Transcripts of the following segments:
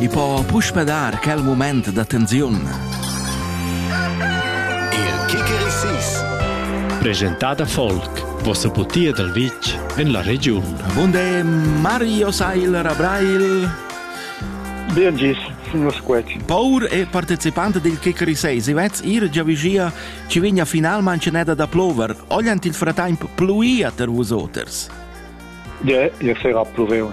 e po puspe dar quel moment da tensiun. Il Kikerisis Presentada Folk Vossa butia dal vitg en la regiun. Bunde Mario Seiler Abrail Bien gis, nus quet. Paur e participant del Kikeri 6, si vez ir già vigia, ci vigna final manceneda da plover, ogliant il fratemp pluia ter vus oters. Ja, ja sera pluveun.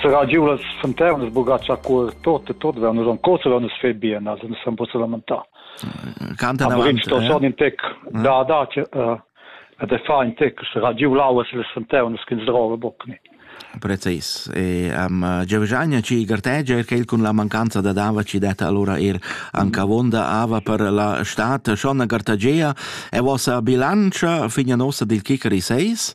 Sera giu las fontanas bugatsch a cur tot e tot vean nus ancora vean nus fe bien, also nus san possa lamentar. Canta davanti. Sto schon in tec da da ed e fa in tec sera giu lauas las fontanas kin drove bockni. Precis. E um, Giovgiania ci gartegia che con la mancanza da dava ci detta allora er anche vonda ava per la stat Shonna Gartagea e vossa bilancia figna nostra del Kicari 6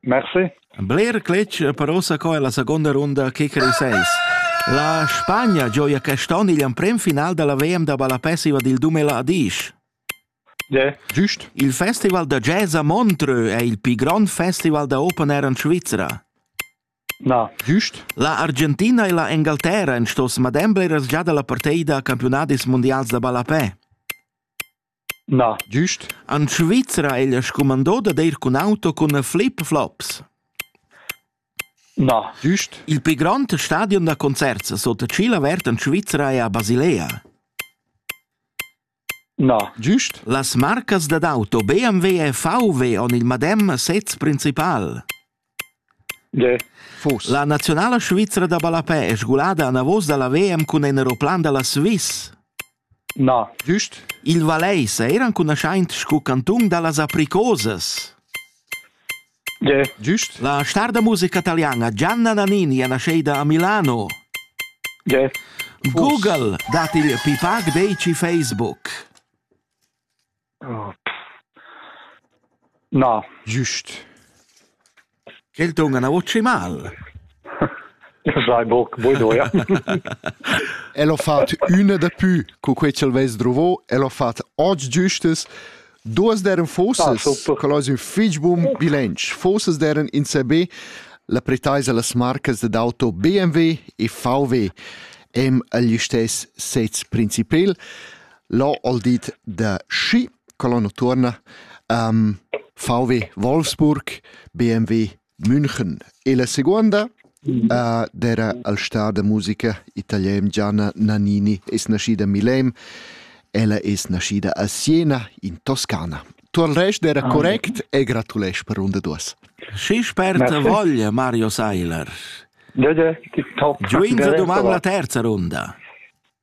Merci. Bler cletg per ossa co è la seconda runda kicker seis. La Spagna gioia quest'on igl emprem final della VM da ballapessiva dil Dumela Adisch. Yeah. Giust. Il festival da jazz a Montreux è il più grande festival da open air in Svizzera. No. Giust. La Argentina e la Engalterra en stos madem bleras già dalla parteida a campionadis mondials da ballapè. Na, güst. En Svizra è ella scumandà dad ir cun auto cun flip-flops. Na, güst. Il pli grond stadion da concerts sut tschil avert en Svizra è a Basilea. Na, güst. Las marcas dad auto BMW e VW han il madem sez principal. La naziunala svizra da ballapè è sgulada anavos da la VM cun in aeroplan da la Swiss. Na. Giust? Il Valais è eranconuschaint sco cantun da las apricosas. Yeah. Giust? La star da musica taliana Gianna Nannini è nasceida a Milano. Yeah. Google dat il pipac deici Facebook. Na. Just. Quel ton ana voce mal. Sai boc, bueno, ja. El ho fat üna da pü, cu quei ch'el vess drovo, el ho fat oggi giustes, duas deren fosses, quel ais ün fich bun bilanc. Fosses deren in CB, la pretaisa las marcas d'auto BMW e VW, em agl istes sez principal. L'ho ol dit da schi, colonna tuorna, um, VW Wolfsburg, BMW München. E la seguonda uh, d'era al star da musica italian Gianna Nannini es nascida a Milem, ella es nascida a Siena, in Toscana. Tu al rest era ah, correct e gratulesc per runda duas. Si sperta voglia, Mario Seiler. Giuinza domanda la terza runda.